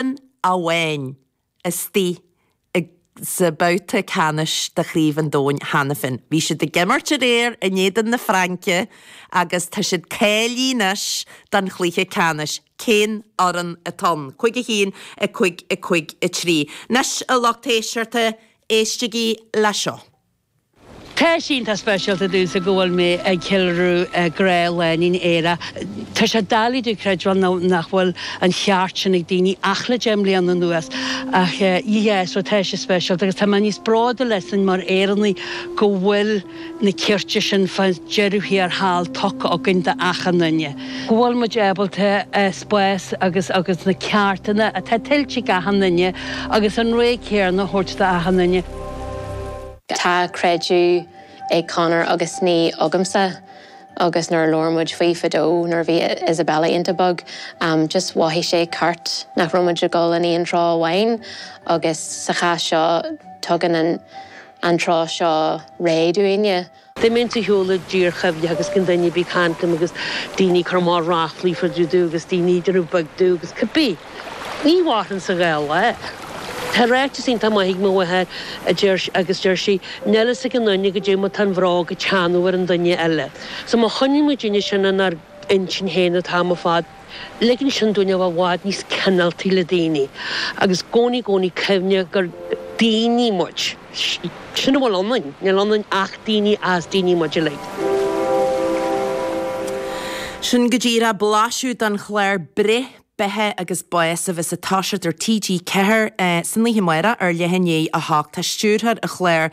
Éireann amháin istoíche sa babhta ceannais de Chraobh an Domhain cheana féin. Bhí siad ag imirt aréir in éadan na Fraince agus tá siad cáilithe anois don chluiche ceannais. Cén fhoireann atá ann? 5-1, 5-5, 3. Anois, a lucht éisteachta, éistigí leis seo. Tá sé iontach speisialta domhsa go bhfuil mé ag ceiliúradh grá lánúin aerach. Tá sé doiligh domh creidbheáil nach bhfuil an cheart sin ag daoine ach le deich mbliana anuas, ach yeah, so tá sé speisialta agus tá mé níos bróduil as sin mar Éireannach go bhfuil na cearta sin fá deireadh thiar thall tugtha againn do achan duine, go bhfuil muid ábalta spás agus agus na ceartanna atá tuillte ag achan duine agus an réidh céanna a thabhairt do achan duine. Tá creideamh ag Conor agus ní agamsa agus nuair a labhair muid faoi fadó nuair a bhí Isabella iontach beag just mhothaigh sé ceart nach raibh muid ag dul in aon treo amháin agus sa chás seo tugann an treo seo réidh dúinn. Dá mbeinn ag siúl i dtír choimhthíoch agus gan duine a bheith ag caint liom agus daoine ag cur amach ráflaí fá dtaobh díom agus daoine ag déanamh a bheag díom agus cibé. Ní mhaithfinnse go leor. Tá ráiteas iontach maith ag mo mháthair agus deir sí, níl a fhios ag an nduine goidé mar atá an bhróg ag teannadh ar an nduine eile. So má choinníonn muidinne sin inár intinn féin an t-am ar fad, Ligeann sin dúinn a bheith i bhfad níos cineáltaí le daoine agus i gcónaí i gcónaí cuimhneamh gur daoine muid. Sin a bhfuil ionainn, níl ionainn ach daoine, is daoine muid uilig. Sin go díreach blaiseadh den chlár Breith, Beatha agus Bás a bheas ag toiseacht ar TG4 san oíche amárach ar leath i ndiaidh 8 Tá stiúrthóir an chláir,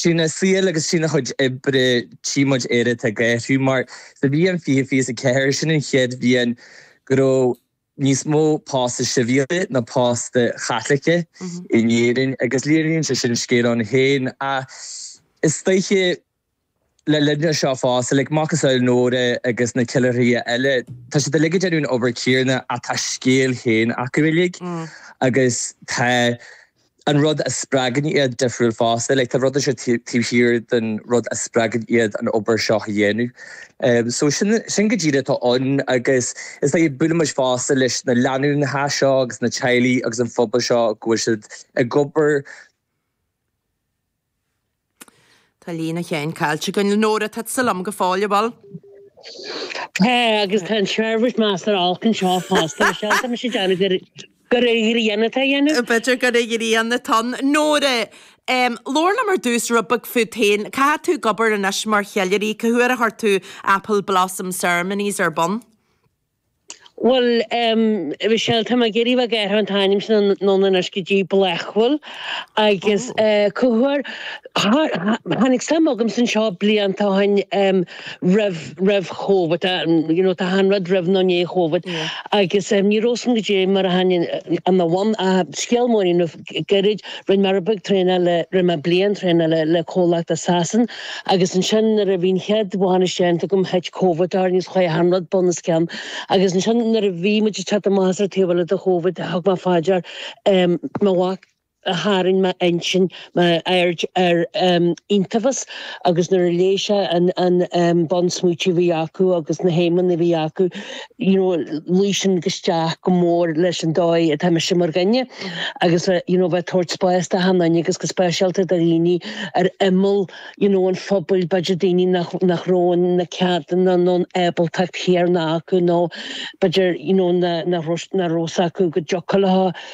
Trína saol agus trína cuid oibre, tchí muid Éire atá ag athrú, mar sa bhliain 2024, sin an chéad bhliain go raibh níos mó póstaí sibhialta ná póstaí Caitliceacha in Éirinn, agus léiríonn sé sin scéal ann féin. Ach is dóiche. Le linn seo fosta, like macasamhail Nóra agus na ceiliúraithe eile, tá siad uilig ag déanamh an obair chéanna ach tá a scéal féin acu uilig agus tá an rud a spreagann iad difriúil fosta. Like, tá rud éigin taobh thiar den rud a spreagann iad an obair seo a dhéanamh. So, sin, sin go díreach atá ann agus is dóigh, buailimid fosta leis na lánúineacha seo agus na teaghlaigh agus an phobal seo go bhfuil siad ag obair, Tá líne Sheáin caillte againn. Nóra, tá tusa liom go fóill, a bhfuil? Tá, agus tá an seirbhís measartha olc anseo fosta, mar sin tá mise ag déanamh gur gur ag an Idirlíon atá a dhéanamh. B'fhéidir gur ag an Idirlíon atá. Nóra, em, labhair liom ar dtús rud beag fút féin, cá bhfuil tú ag obair anois mar cheiliúraí, cá huair a chuir tú Apple Blossom Ceremonies ar bun? Bhuel, Michelle, táim ag iarraidh a mhacasamhail an t-ainm sin anonn anois go dtí Blackwell agus Gaoth Dobhair, tháinig suim agam san seo blianta ó shin roimh, roimh Chóvid, you know, tá achan rud roimh nó i ndiaidh Chóvid agus ní raibh sin go dtí mar a tháinig an, an, scéal Maureen roimh gairid. Rinne mé rud beag traenáil, rinne mé bliain traenála le comhlacht as Sasain agus ansin nuair a bhí an chéad bhainis déanta agam thit Covid orainn agus chuaigh achan rud bun os cionn agus ansin nuair a bhí muid ag teacht amach as ar an taobh eile de Covid thug mé faoi dear mo mhac a tharraing m'intinn, m'aird ar iontaifeas agus nuair a léigh sé an bunsmaointí a bhí acu agus na haidhmeanna a bhí acu. you know, luigh sin isteach go mór leis an dóigh atá mise mar dhuine agus a, you know, bheith ag tabhairt spáis do achan duine agus go speisialta do dhaoine ar imeall, you know, an phobail, b'fhéidir daoine nach, nach raibh na ceadanna nó an ábaltacht chéanna acu nó b'fhéidir, you know, nach raibh, nach raibh fhios acu go dtiocfadh leo.